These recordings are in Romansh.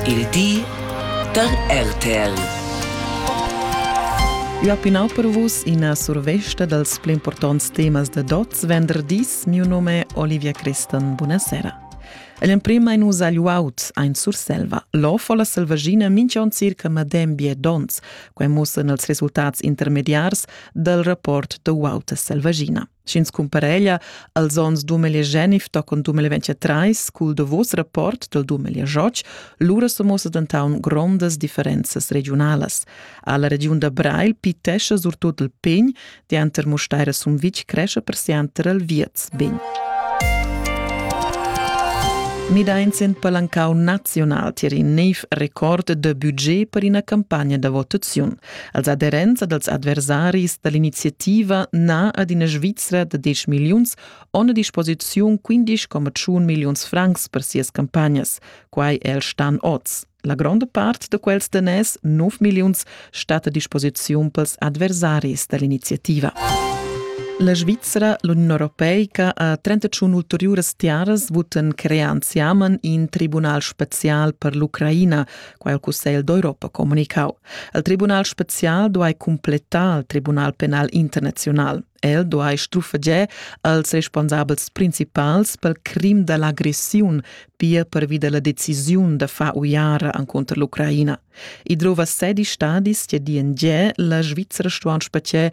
Il di da RTL. Ua pinau per vus ina survesta dals pli importants temas da Dots venderdis. Mio nome è Olivia Christan. Buonasera. All'emprima in us agl uaut ein Surselva. L'of o la selvaggina mincion circa madem bie dons, quai mussan els resultats intermediars dal rapport da uauta selvaggina. Sch'ins cumpareglia als onns 2019 tochen 2023 cul davos rapport dal 2018, lura so muossa dentaun grondas differenzas regiunalas. Alla regiun da Breil pitescha surtut il pegn, dianter Musteira Sumvitg cresce persianter il Vierz Begn. Midains in palancau naziunal tier in neiv record de budget per ina campagna da votaziun. Als aderents dals adversaris da l'iniziativa na ad ina Svizra da 10 milliuns on a disposiziun 15,1 milliuns francs per sias campagnas. Quai è il Stan oz. La gronda part da quels daners, 9 milliuns, stat a disposiziun pels adversaris da l'iniziativa. La Svizra, l'Uniun Europeica, ha 31 ulteriuras tiaras votan crear anziaman in tribunal special per l'Ucraina, quai il Cussegl d'Europa comunicau. Il Tribunal spezial duai cumplettar il Tribunal penal internaziunal. El duai strufegiar als responsabels principals pel crim da l'agressiun, pia pervi da la decisiun da far uiara encontro l'Ucraina. I drova sedi stadis che di en giè la Svizzera stuan spetgare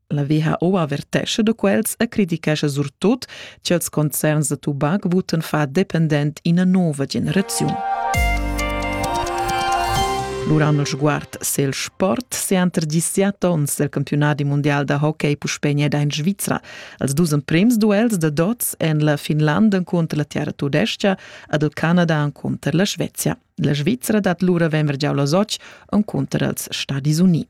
La WHO avertescha da quels e criticescha surtut ch'ils concerns da tubac votan fa dependent ina nova generaziun. L'uran sguard sel sport se anter disiat ons del campionati mondial da hockey puspegna da in Svizra. Als dus emprems duels da dots en la Finlanda contra la Terra Tudescia ad el Canada contra la Svezia. La Svizzera dat lura venver giau la soc contra els Stadis Uniti.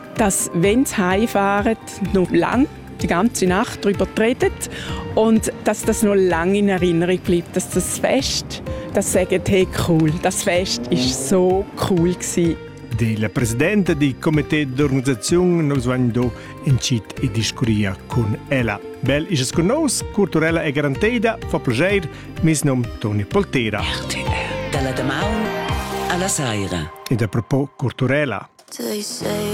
Das Wenz heimfahren noch lang, die ganze Nacht darüber geredet und dass das noch lange in Erinnerung bleibt, dass das Fest, das sagen hey cool, das Fest ist so cool gewesen. Il presidente di comité d'organizzazione nos vegn do incit e discuria con ella. Bel is con nos, culturella e garanteida, fa piacere, mis nom Toni Poltera. Dalla damaun alla saira. E da propo culturella. They say